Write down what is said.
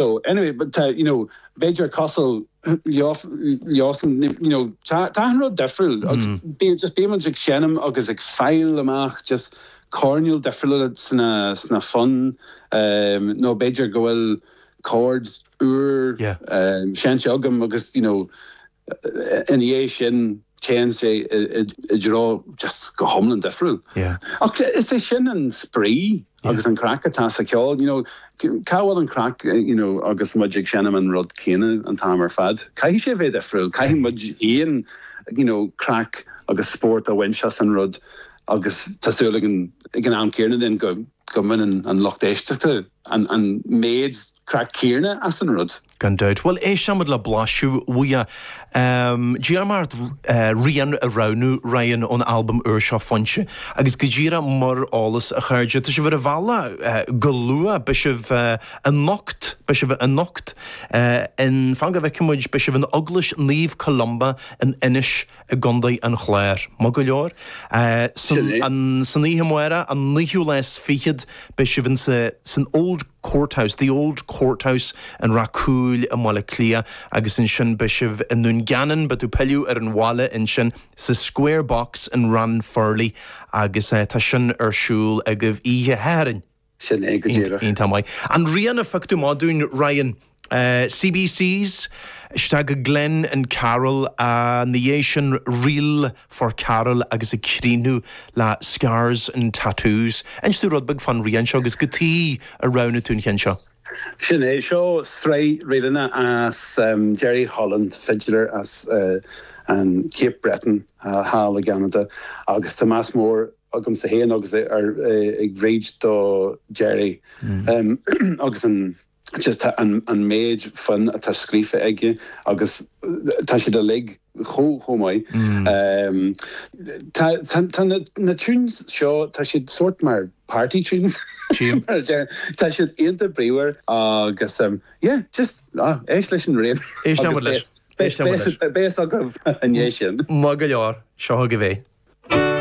So, anyway, but tá, you know, b'fhéidir cosúil leosan, you know, tá achan rud difriúil agus bíonn, just bíonn muid ag seinm agus ag fáil amach just coirnéil difriúla sna fonn nó b'fhéidir go bhfuil córd úr seinnte agam agus, you know, ina dhiaidh sin téann sé i dtreo just go hiomlán difriúil. Ach is é sin an spraoi agus an chraic atá sa cheol, you know, cá bhfuil an chraic, you know, agus muid ag seinm an rud céanna an t-am ar fad? Caithfidh sé a bheith difriúil, caithfidh muid féin, you know, craic agus spórt a bhaint as an rud agus tá súil againn ag an am céarna then go mbaineann an lucht éisteachta, an méid craic céarna as an rud. Gan dabht. Bhuel, éistfidh muid le blaiseadh uaidh. D'iarr mé ort rian a roghnú, Ryan, ón albam úr seo Foinse, agus go díreach mar eolas, a chairde, tá sibh ar an bhealach go luath, beidh sibh anocht, beidh sibh anocht in, fan go bhfeicfidh muid, beidh sibh in Eaglais Naomh Columba in Inis, i gCondae an Chláir. Maith go leor. Sin é. San oíche amárach, an naoú lá is fichead, beidh sibh san Old Court House, The Old Court House, in Ráth Cúil i mBaile Átha Cliath agus ansin beidh sibh i nDún Geanainn, beidh tú pilleadh ar an bhaile ansin, sa Square Box in Ranfurly agus tá sin ar siúl agaibh oíche Shathairn. Sin é go díreach. Iontach maith. An rian a phioc tú amach dúinn, Ryan. CBCs, isteach go Glenn and Karl, ina dhiaidh sin Reel for Carl agus ag críochnú le Scars and Tattoos. Inis domh rud beag fán rian seo agus cad chuige a roghnaigh tú an cheann seo. Sin é, seo sraith ríleanna as Jerry Holland, fidléir as an Cape Breton thall i gCeanada agus tá meas mór agamsa féin agus ag Bríd do Jerry agus an just an méid fonn atá scríofa aige agus tá siad uilig chomh maith. Tá na tunes seo, tá siad sórt mar party tunes mar a deir, tá siad iontach bríomhar agus yeah just éist leis an rian agus beidh a fhios agaibh i ndiaidh sin. Maith go leor, seo agaibh é.